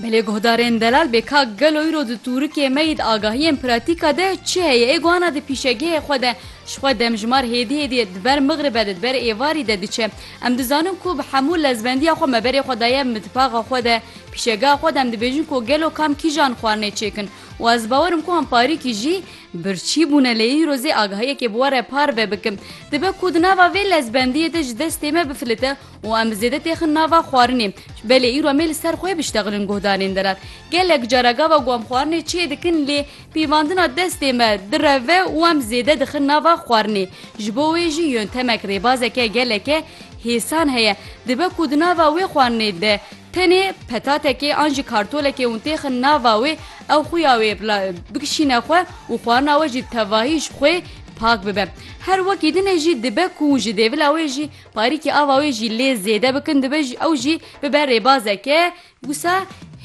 Belê guhdarên delal bê kak gelo îro di tûrikê me yî di agahiyên pratîka de çi heye ê guhana di pîşegehê xwe de ji xwe demjimar hêdî hêdî di ber mixribe de di ber êvarî de diçe em dizanin ku bi hemû lezbendiya xwe me berê xwe daye mitbaxa xwe de pîşegeha xwe de em dibêjin ku gelo kam kîjan xwarinê çêkin û ez bawerim ku em parîkî jî birçî bûne lê îro zê agahiyekê bi we re parve bikim dibe ku di nava vê lezbendiyê de ji destê me bifilite û em zêde têxin nava xwarinê. Belê îro mê li ser xwe biştexilin guhdarên derar. Gelek cara gava ku em xwarinê çê dikin lê pîvandina destê me direve û em zêde dixin nava xwarinê. Ji bo wê jî yöntemek rêbazeke geleke hêsan heye. Dibe ku di nava wê xwarinê de tenê petatekê an jî kartolekê hûn têxin nava wê ew xuya wê bikişîne xwe û xwarina we jî tevahî ji xwê pak bibe. Her wekî din e jî dibe ku ji dêvila wê jî Parîkê ava wê jî lê zêde bikin dibe ji ew jî bibe rêbazeke wisa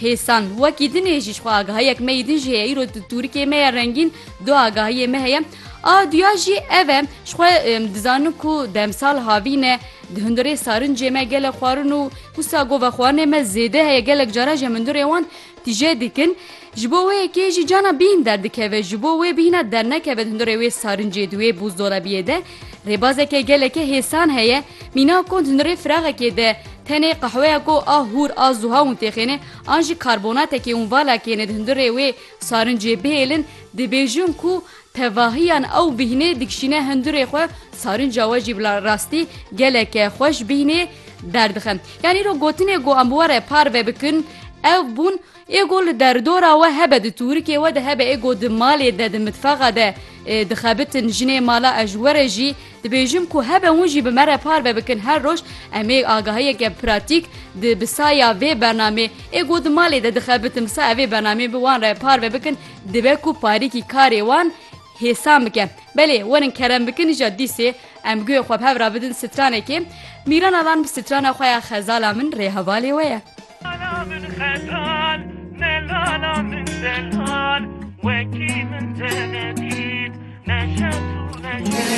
hêsan. Wekî dinê jî jixwe agahiyek me yî din jî heye îro di tûrikê me ye rengîn du agahiyê me heye. A duya jî ev e jixwe dizanin ku demsal havîne di hundirê sarincê me gelek xwarin û wisa govexwarinê me zêde heye gelek caran ji hem hundirê wan Tije dikin, ji bo wê yekê jî cana bîn derdikeve, ji bo wê bîna dernekeve hundirê wê sarincê di wê bûzdolabiyê de rêbazeke geleke hêsan heye, mîna ku hundirê firaxekê de tenê qehweya ku a hûr a zuha hûn têxêne an jî karbonatekê hûn valakêne di hundirê wê sarincê bihêlin, dibêjin ku Tevahiyan ew bîhnê dikişîne hindurê xwe, sarinca we jî bila rastî geleke xweş bîhnê derdixe. Yan îro gotinê ku em were parve bikin ev bûn, Ê ku li derdora we hebe di tûrikê we de hebe ê ku di malê de di mitfaxa de dixebitin jinê mala ez ji we re jî dibêjim ku hebe hûn jî bi me re parve bikin her roj em ê agahiyeke pratîk di bi saya vê bernamê ê ku di malê de dixebitin bi saya vê bernamê bi wan re parve bikin Dibe ku parîkî karê wan hêsan bike. Belê werin kerem bikin îja dîsê em guhê xwe bi hev ra bidin stranekê. Mîrana van bi strana xwe ya Xezala min rê hevalê we ye. Lala min xezal ne lala min zelal wekî min te nedît neşet û neşet.